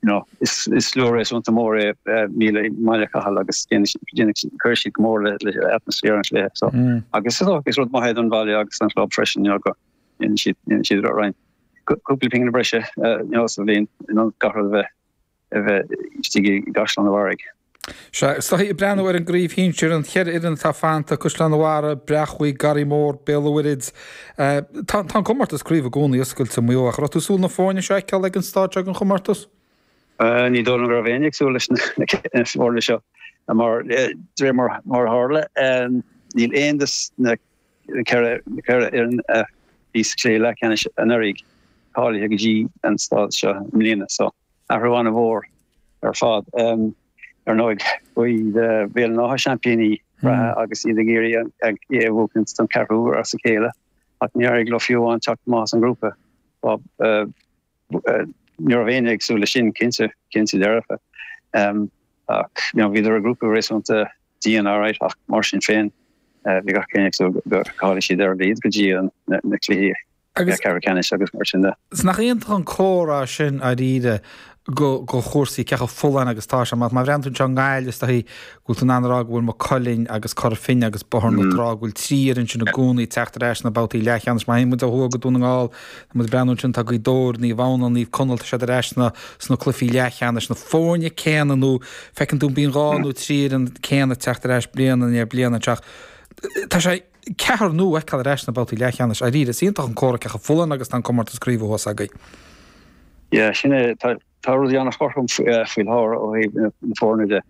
Bhí slua réasúnta mór i mBaile, i mBaile Chathail agus chuir siad go mór le atmaisféar an chluiche so. Agus is dócha is rud maith é don bhaile agus an chlub freisin you know go ndéanann siad déanann siad roinnt, cúpla pingin breise you know sa bhliain in ionad gach rud a bheith a bheith istigh i gCaisleán an Bharraigh. Sea, is dóichí ag breathnú ar an gcraobh shinsir, an cheithre fhoireann atá fanta, Caisleán a' Bharraigh, Breachmhaigh, Garraí Mór, Béal a' Mhuirthid. Tá an comórtas craoibhe i gcónaí oscailte i Maigh Eo, ach an raibh tú ag súil na foirne seo a fheiceáil ag an stáid seo den chomórtas? Ní dóigh liom go raibh éinne ag súil leis na foirne seo mar, de réir mar a tharla, níl aon dos na ceithre fhoireann a bhí sa chluiche leathcheannais anuraidh cáilithe go dtí an stáid seo i mbliana. Athrú an-mhór ar fad. Ar ndóigh, b'iad Béal an Átha seaimpíní reatha agus iad ag iarraidh é a bhuachaint don ceathrú uair as a chéile ach níor éirigh leo fiú amháin teacht amach as an grúpa. Ní raibh éinne ag súil leis sin cinnte, cinnte dearfa. Ach you know, bhíodar i grúpa réasúnta dian all right ach mar sin féin bhí gach éinne ag súil go gcáileoidh siad ar a mhéad go dtí na cluichí Agus. Ceathrú ceannais agus mar sin de. Is nach iontach an comhartha sin, dáiríre, do chúrsaí cé chomh folláin agus tá sé, má bhreathnaíonn tú anseo i nGaillimh, is dóichí go bhfuil tú in ann a rá go bhfuil Maigh Cuilinn agus Cora Finne agus Bóthar na Trá, go bhfuil trí fhoireann sin i gcónaí ag teacht ar ais sna babhtaí leathcheannais. Má théann muid ó thuaidh go Dún na nGall, tá muid ag breathnú ansin, tá Gaoth Dobhair, Naomh Adhamhnáin, Naomh Conaill, tá siad ar ais sna cluichí leathcheannais, na foirne céanna nó feiceann tú bíonn dhá nó trí fhoireann céanna ag teacht ar ais bliain i ndiaidh bliana anseo. Tá sé. ceathair nua a fheiceáil ar ais sna babhtaí leathcheannais. Dháiríre, is iontach an comhartha cé chomh folláin agus tá an comórtas craoibhe thuas agaibh. Yeah, sin é. Tá rudaí an-chothrom faoi láthair ó thaobh na foirne de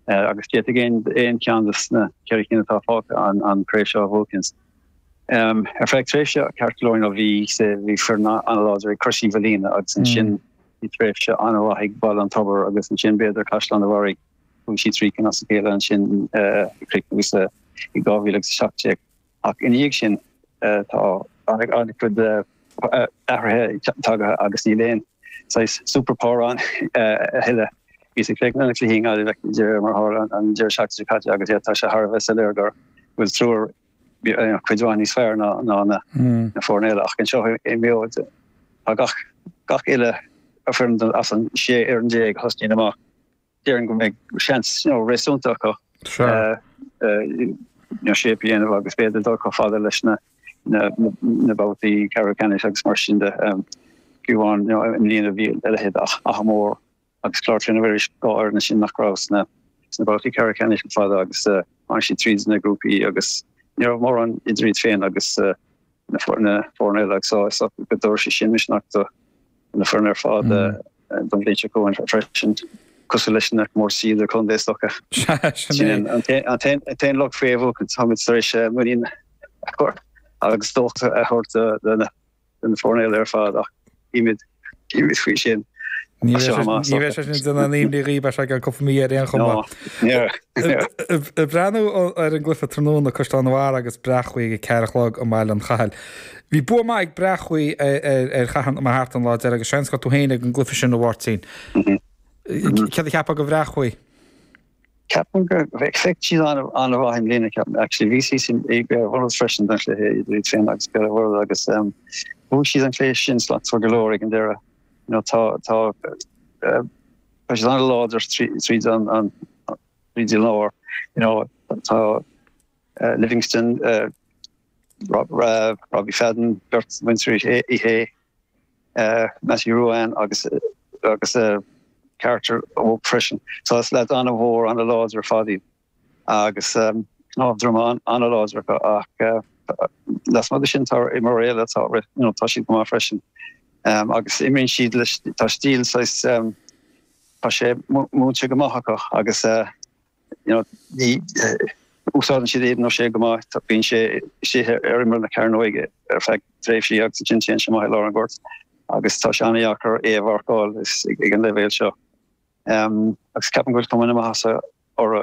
agus d'fhéadfadh aon cheann dos na ceithre cinn atá fágtha an chraobh seo a bhuachaint. Ar feadh tréimhse ceart go leor nó bhí bhí foireann láidir ag Crois Mhaoilíona agus ansin bhí tréimhse an-mhaith ag Baile an Tobair agus ansin b'fhéidir Caisleán a Bharraigh. Bhuaigh siad trí cinn as a chéile ansin ag críochnú suas i 2017, ach ina dhiaidh sin tá an-chuid athruithe tagtha agus níl aon saghas superpower ann a thuilleadh. Bhíos ag plé go minic cluichí i nGaillimh ag deireadh mar a tharla ar an deireadh seachtaine caite agus iad tá sé thar a bheith soiléir go bhfuil triúr cuid mhaith níos fearr ná na foirne eile ach anseo i Maigh Eo tá gach uile foireann as an sé fhoireann déag a thosnaíonn amach. déarfainn go mbeidh seans réasúnta acu shape a dhéanamh agus b'fhéidir dul chomh fada leis na babhtaí ceathrú ceannais agus mar sin de fiú amháin i mbliana a bhí a leithéid Achadh Mór agus Clár Chlainne Mhuiris dhá fhoirne sin nach raibh sna babhtaí ceathrú ceannais le fada agus tháinig siad tríd na grúpaí agus ní raibh mórán idir iad féin agus na foirne foirne eile agus tá a fhios agat go dtabharfaidh sé sin misneach do na foirne ar fad don bhliain seo chugainn freisin, cosúil leis na comórtaisí idirchontae. Is dócha sin é an t-aon locht faoi fhéachaint. Táimid tar éis muinín a chur agus dóchas a thabhairt do na foirne eile ar fad ach Bímid dírithe faoi sin. Ní bheidh sé sin ag déanamh imní dhaoibhse go ceann cúpla mí ar aon chuma. Ag breathnú ar an gcluife tráthnóna Caisleán an Bharraigh agus Bréachmhaigh ag a ceathair a chlog i mBaile an Chathail. Bhí bua maith ag Bréachmhaigh ar Chathair na Mart an lá deiridh agus seans go raibh tú féin ag an gcluife sin, a Mháirtín. Céard a cheapfá de Bhréachmhaigh? Ceapaim go bhfeicfeadh feic siad an-mhaith i mbliana, ceapaim. Actually, bhíos-sa ann freisin don chluiche idir iad féin agus Béal an Mhuirthead agus bhuaigh siad an cluiche sin slachtmhar go leor ag an deireadh. You know, tá, tá, eh, tá siad an-láidir tríd an, an, tríd an lár. You know, tá eh, Livingstone, eh, Rob, Robbie Fadden, beirt mhuintir Uí Shé. Matthew Ruane agus agus a dheartháir óg freisin. So is leaid an-mhór, an-láidir ar fad iad agus cnámh droma an-láidir acu ach lasmuigh de sin tá imreoirí eile atá, you know, tá siad go maith freisin. Agus imríonn siad leis, tá stíl saghas, tá sé múinte go maith acu agus Úsáideann siad Aidan O'Shea go maith. Bíonn sé istigh ar imeall na cearnóige ar feadh tréimhsí agus ansin téann sé amach i lár an ghoirt agus tá sé an-deacair é a mharcáil ag an leibhéal seo. Agus ceapaim go bhfuil cuma na maitheasa orthu.